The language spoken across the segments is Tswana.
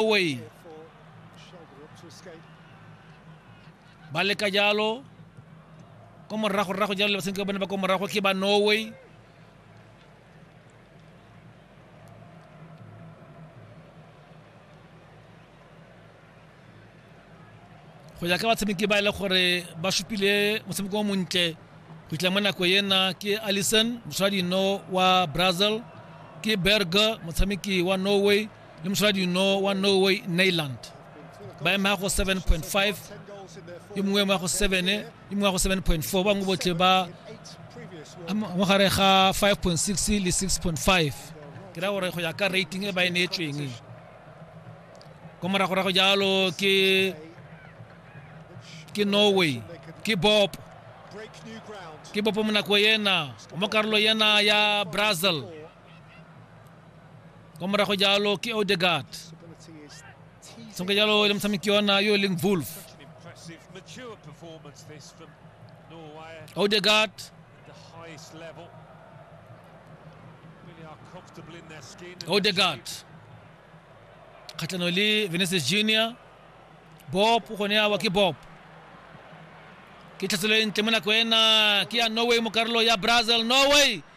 away. ba leka jalo ko morago rrago jalo le basenke ba bone ba ko morago ke ba norway go ya ka batshameki ba e le gore ba supile motshameko o montle go itla mo nako ena ke allison moswadino wa brazil ke berger motshameki wa norway le mosaladi no wa norway neyland ba ema go 7.5 yo mongwe ema go 7 yo mongwe go 7.4 bangwe botlhe ba mo gare ga 5.6 le 6.5 ke ra gore go ya ka rating e ba e neetsweng ko moragorago jalo ke ke norway ke bop ke bopo mo nako yena mo karolo yena ya brazil kwa morago jalo ke odegard sonke jalo le motshameki yona yo e leng wolf odegard odegard kgatlhano le veneces junior bob o gone awa ke bob ke tlhatselo e ntle mo nako ena ke ya norway mo karolo ya brazil norway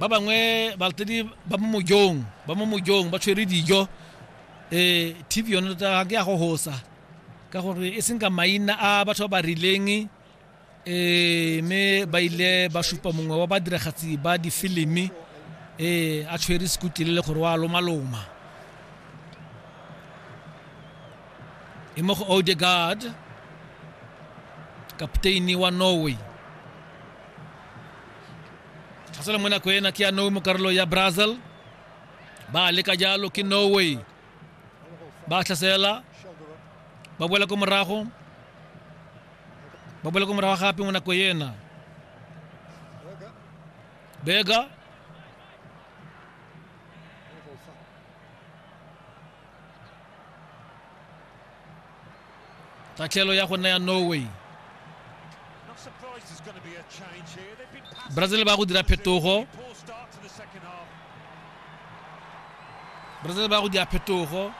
ba bangwe balatedi ba mo mojong ba mo mojong ba tshwere dijo eh tv yone tota ke ya go hosa ka gore e seng ka maina a batho ba ba rileng eh me ba ile ba supa mongwe wa badiragatsi ba difilimi eh a tshwere sekutlile le gore wa lomaloma e mo go odegaard kapteini wa norway tlhasela mo nako ena ke ya nowe mo karolo ya brazil ba leka jalo ke norway ba tlhasela ba boela ko morago ba boela ko morago gape mo nako ena bega tatlhelo ya go nna ya norway brazil ba go dira phetogo brazil ba go dira phetogo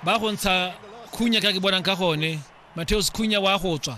ba go ntsha khunya ka ke bonang ka gone mateos khunya wa go tswa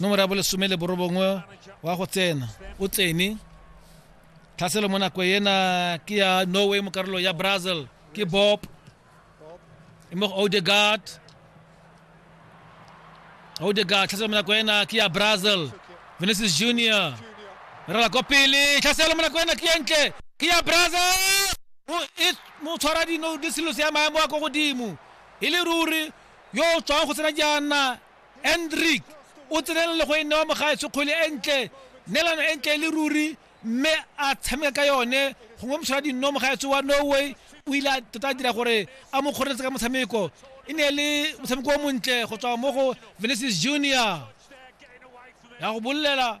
nomoro ya bolesome le borobongwe wa go tsena o tsene tlhaselo mo nako ena ke ya norway mo karolo ya brazil ke bob e mo go odegard odegard tlhaselo mo nako ena ke ya brazil vinicius junior rela ko pele tlhaselo mo nako ena ke entle ke ya brazil mo tshwara dino di selosi ya maemo a ko godimo e le ruri yo o tswang go tsena jaana endrick o tsenela le go e newa mogaetsho kgwele e ntle nelano e ntle e le ruri mme a tshameka ka yone gongwe moshwara dinno mogaetsho wa norway o ile a tota a dira gore a mo kgoreletse ka motshameko e ne e le motshameko o montle go tswa mo go venesis junior ya go bolelela